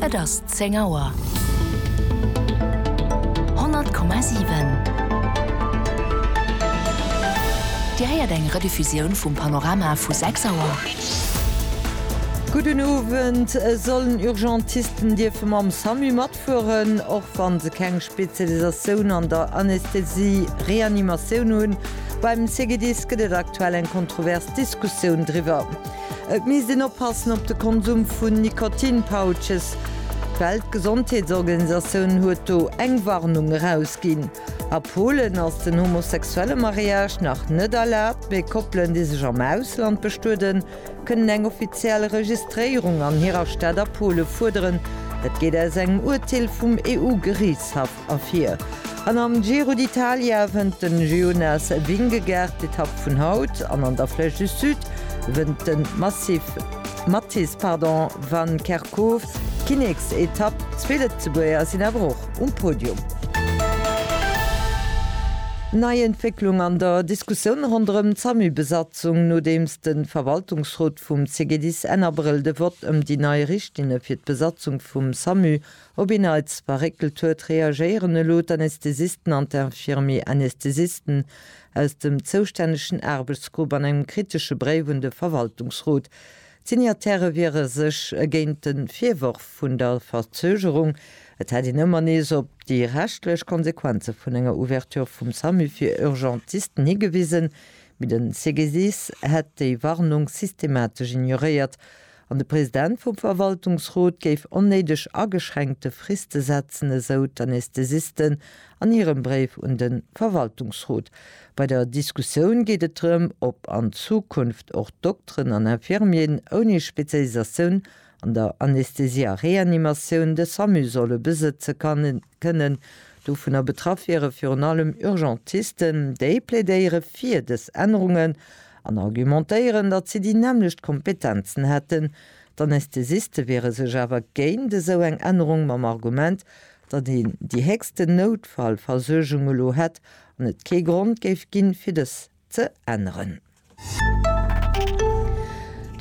Et ass zéng Auer. 100,7. Dir héiert eng Rediffusioun vum Panorama vu sechs Auer. Gudden Owend. Sollen Urgentisten dierfe mam Samu matfueren, och wa se keng Spezialisatioun an der Anästhesie-Reanimatioun hunn? Beim CGDIS gëtt et aktuell eng kontrovers Diskussioun driwwer. Et misst een oppassen op de Konsum vun Nikotin-Pouches. D'Weltgesondheetsorganisatioun huet do eng Warnung erausginn. A Polen ass den homosexuelle Mariage nach net erlaabt, mee Koppelen, déi sech am Ausland bestueden, kënnen eng offiziell Registréierung an hirer Stad a Pole fuerderen. Dat geet aus engem Urteel vum EU-Geriichtshaff Ervir an am Giro d'Italia wënnt de Jonas Vingegaard d'Etapp vun haut an an der Flèche du Sud wënnt de Mathis van Kerkhof d'Kinneksetapp. Zwee Lëtzebuerger sinn awer och um Podium. Nei Entwécklung an der Diskussioun ronderëm d'SAMU-Besatzung, nodeems de Verwaltungsrot vum CGDIS Enn Abrëll de Vott ëm déi nei Richtlinne fir d'Besatzung vum SAMU Op een Neits verréckelt huet, reagéieren elo d'Anästhesisten an d'Infirmier Anästhesisten aus dem zoustännegen Aarbechtsgrupp an engem kritesche Bréif un de Verwaltungsrot. D'Signataire wiere sech géint de Virworf vun der Verzögerung, et hätt een ëmmer nees op déi rechtlech Konsequenze vun enger Ouverture vum Samu fir Urgentisten higewisen, mee de CGDIS hätt déi Warnung systematesch ignoréiert An de President vum Verwaltungsrot géif onnéideg ageschränkte Friste setzen, esou d'Anesthesisten an hirem Bréif un de Verwaltungsrot. Bei der Diskussioun geet et drëm, ob an Zukunft och Dokteren an Infirmieren ouni Spezialisatioun an der Anästhesie a Reanimatioun de SAMU solle besëtze kannen. kënnen dovunner betraff wieren, virun allem Urgentisten. Déi plädéiere fir dës Ännerungen an argumentéieren, datt si déi nämmlecht Kompetenzen hätten. D'Anästhesiste wiere sech awer géint esou eng Ännerung mam Argument, datt een déi héchsten Noutfallversuergung elo hätt an et kee Grond géif ginn, fir dës ze änneren.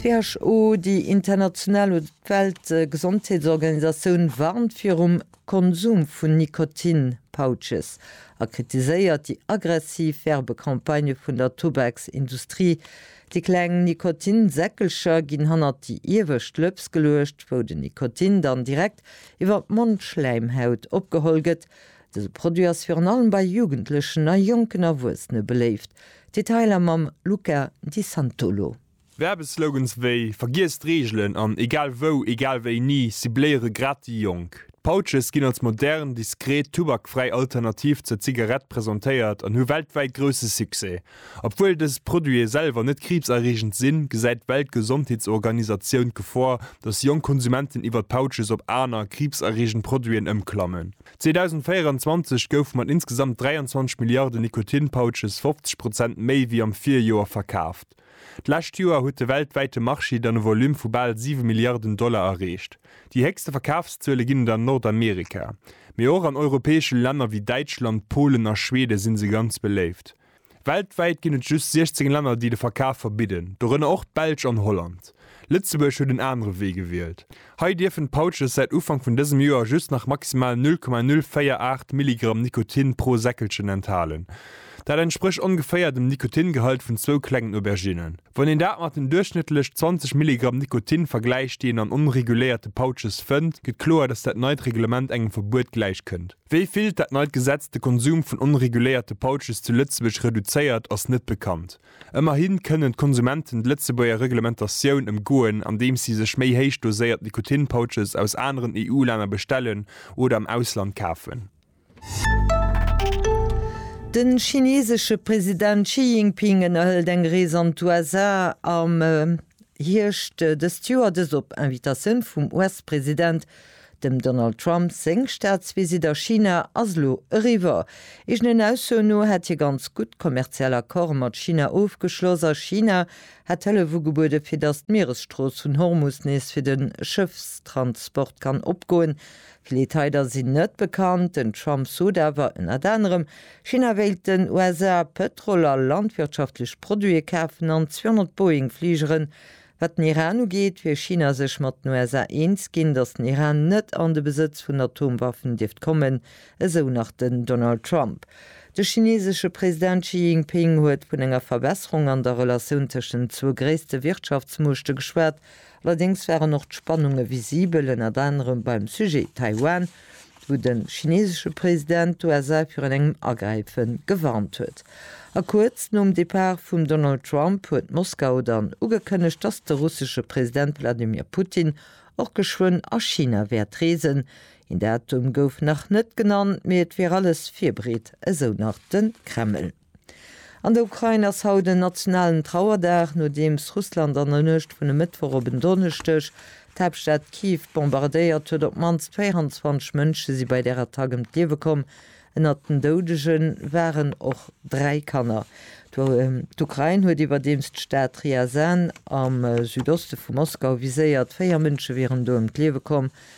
D'WHO, déi international oder d'Weltgesondheetsorganisatioun, warnt virum Konsum vun Nikotin-Pouches a kritiséiert déi aggressiv Werbecampagne vun der Tubaksindustrie. Déi kleng Nikotin-Säckelcher ginn hannert déi iewescht Lëps geluecht, wou den Nikotin dann direkt iwwer d'Mondschläimhaut opgeholl gëtt, Dëse Produit ass virun allem bei Jugendlechen a jonken Erwuessene beléift. Detailer mam Luca Di Santolo. Werbeslogans wéi Vergiess d'Reegelen an Egal wou, egal wéini cibléiere grad déi Jonk. D'Pouches ginn als modern, diskret, tubakfräi Alternativ zur Zigarett presentéiert an hu weltwäit grousse Succès. Obwuel dës Produite selwer net kriibserreegend sinn, gesäit d'Weltgesondheetsorganisatioun d'Gefor, datt jonk Konsumenten iwwer d'Pouches op aner, kriibserreegend Produiten ëmklammen. 2024 goufe mat insgesamt 23 Milliarde Nikotin-Pouches 50 Prozent méi wéi am Virjoer verkaaft. D'lescht Joer huet de weltwäite Marché dann e Volume vu bal 7 Milliarden Dollar erreecht. Déi héchste Verkafszuele ginn et an Nordamerika, mee och an europäesche Länner wéi Däitschland, Polen a Schwede si se ganz beléift. Weltwäit ginn et just 16 Länner, déi de Verkaf verbidden, dorënner och d'Belsch an Holland. Lëtzebuerg huet en anere Wee gewielt. Hei dierfen d'Pouches säit Ufank vun dësem Joer just nach maximal 0,048 Milligramm Nikotin pro Säckelchen enthalen. Dat entsprécht ongeféier dem Nikotingehalt vun zwou klengen Auberginnen. Wann een dat mat den duerchschnëttlech 20 Milligramm Nikotin vergläicht, déi een an onreguléierte Pouches fënnt, gëtt kloer, dass dat neit Reglement engem Verbuet gläichkënnt. Wéi vill dat neit Gesetz de Konsum vun onreguléierte Pouches zu Lëtzebuerg reduzéiert, ass net bekannt. Ëmmerhi kënnen d'Konsumenten d'Lëtzebuerger Reglementatioun ëmgoen, andeems si sech méi héich doséiert Nikotin-Pouches aus aneren EU-Länner bestellen oder am Ausland kafen. De chineesesche President Xi Jinping ënnerhëlt eng Rees an d'USA am Hierscht dëst Joer, dëst op Invitatioun vum US-President. Dem Donald Trump seng Staatsvisitt a China ass elo eriwwer. Eegenen Aussoen no hätt hie ganz gutt kommerziell Accorde mat China ofgeschloss a China hätt Hëllef ugebuede fir datt d'Mieresstrooss vun Hormus nees fir de Schëffstransport kann opgoen, Vill Detailer sinn net bekannt. Den Trump sot awer ënnert anerem, China wéilt den USA Pëtrol a landwirtschaftlech Produite kafen an 200 Boeing-Fligeren. Wat den Iran ugeet, wier China sech mat den USA eens ginn, datt den Iran net an de Besëtz vun Atomwaffen dierft kommen, esou nach den Donald Trump. De chineesesche President Xi Jinping huet vun enger Verbesserung an der Relatioun tëschent den zwou gréisste Wirtschaftsmuechte geschwat Allerdéngs waren och d'Spannunge visibel, ënnert anerem beim Sujet Taiwan, wou de chinesesche President d'USA virun engem Agräife gewarnt huet. A kuerz nom Depart vum Donald Trump huet Moskau dann ugekënnegt, dass de russesche President Wladimir Putin och geschwënn a China wäert reesen. Een Datum gouf nach net genannt, mee et wier alles virbereet, esou nach de Kreml. An der Ukrain ass haut en nationalen Trauerdag, nodeems Russland an der Nuecht vun e Mëttwoch op en Donneschdeg d'Haaptstad Kiew bombardéiert huet. Op d'mannst 24 Mënsche si bei där Attack ëm d'Liewe komm. Ënnert den Doudege waren och dräi Kanner. D'Ukrain huet iwwerdeems d'Stad Ryazan am Südoste vu Moskau viséiert. Véier Mënsche wieren do ëm d'Liewe komm,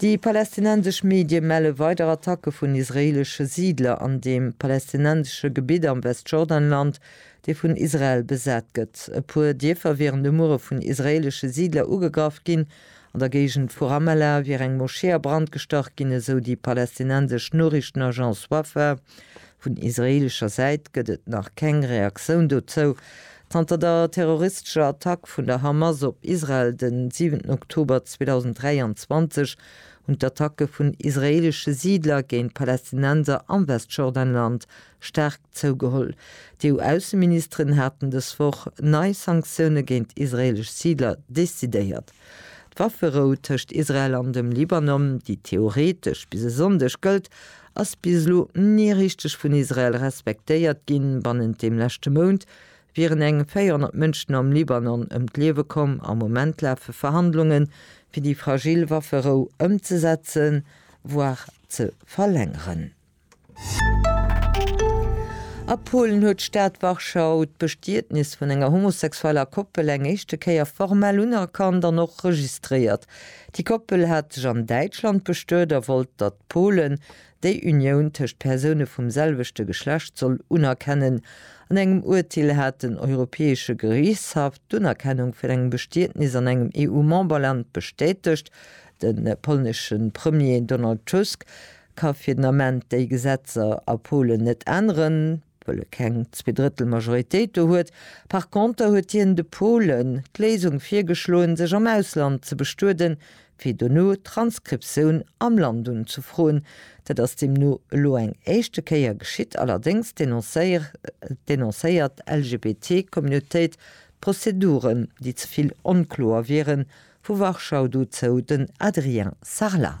Déi palästinensesch Medie melle weider Attacke vun israeelesche Siidler an deem palästinensesche Gebitt am Westjordanland, dee vun Israel besat gëtt. E puer Dierfer wieren de Muere vun israeelesche Siidler ugegraff ginn. An der Géigend vu Ramallah wier eng Moschee a Brand gestach ginn, esou déi palästinensesch Noriichtenagence Wafa. Vun israeelescher Säit gëtt et nach keng Reaktioun dozou. Zanter der terroristescher Attack vun der Hamas op Israel den 7 Oktober 2023 hunn d'Attacke vun israeelesche Siidler géint Palästinenser am Westjordanland staark zougeholl. D'EU-Ausseministeren haten dës Woch nei Sanktioune géint israeelesch Siidler decidéiert. D'Wafferou tëscht Israel an dem Libanon, déi theoretesch bis e Sonndeg gëllt, ass bis elo ni richteg vun Israel respektéiert ginn. Bannent dem leschte Mount wieren eng 400 Mënschen am Libanon ëm d'Liewe komm. Am Moment lafe Verhandlungen, fir déi fragil Wafferou ëmzesetzen, voire ze verlängeren. A Polen huet d'Stad Warschau d'Bestietnis vun enger homosexueller Koppel eng éischte Kéier formell unerkannt an och registréiert. Déi Koppel hat sech an Däitschland bestuet a wollt, datt d'Polen déi Unioun tëscht Persoune vum selwechte Geschlecht soll unerkennen. An engem Urteel hat den Europäesche Geriichtshaff d'Unerkennung vun engem Bestietnis an engem EU-Memberland bestätegt. De polnesche Premier Donald Tusk ka fir den Ament déi Gesetzer a Polen net änneren, wëll e keng Zweedrëttel Majoritéit do huet. Par conter huet hien de Polen d'Léisung virgeschloen, sech am Ausland ze bestueden, fir dono d'Transkriptioun am Land unzefroen. Dat ass deemno elo eng éischte Kéier geschitt, allerdéngs denoncéiert d'LGBTI-Communautéit d'Prozeduren, déi ze vill onkloer wieren, vu Warschau dozou den Adrien Sarlat.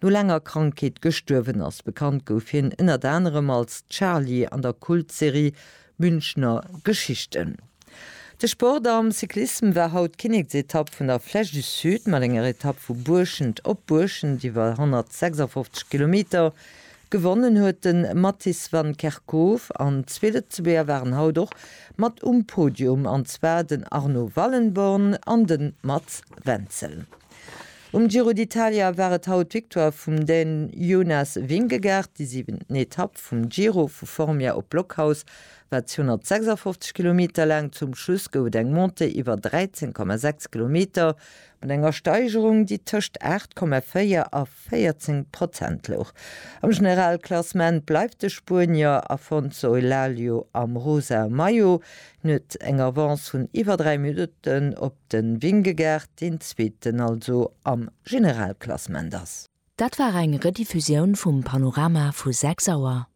no laanger Krankheet gestuerwen ass. Bekannt gouf hien ënnert anerem als Charly an der Kultserie Münchner Geschichten. De Sport am Cyclissem war haut d'Kinneksetapp vun der Flèche du Sud mat enger Etapp vu Buerschent op Buerschent iwwer 156 Kilometer. Gewonnen huet de Mattis Van Kerkhof an zwee Lëtzebuerger waren haut och mat um Podium, an zwar den Arno Wallenborn an de Mats Wenzel. Um Giro d'Italia war et haut d'Victoire vum Dän Jonas Vingegaard. Déi siwent Etapp vum Giro, vu Formia op Blockhaus, war 256 Kilometer laang. Zum Schluss gouf et eng Montée iwwer 13,6 Kilometer mat enger Steigerung, déi tëscht 8,4 a 14 Prozent louch. Am Generalklassement bleift de Spuenier Afonso Elalio am rosae Maillot. Hien huet eng Avance vun iwwer 3 Minutten op de Vingegaard, deen Zweeten also am Generalklassement ass. Dat war eng Rediffusioun vum Panorama vu 6 Auer.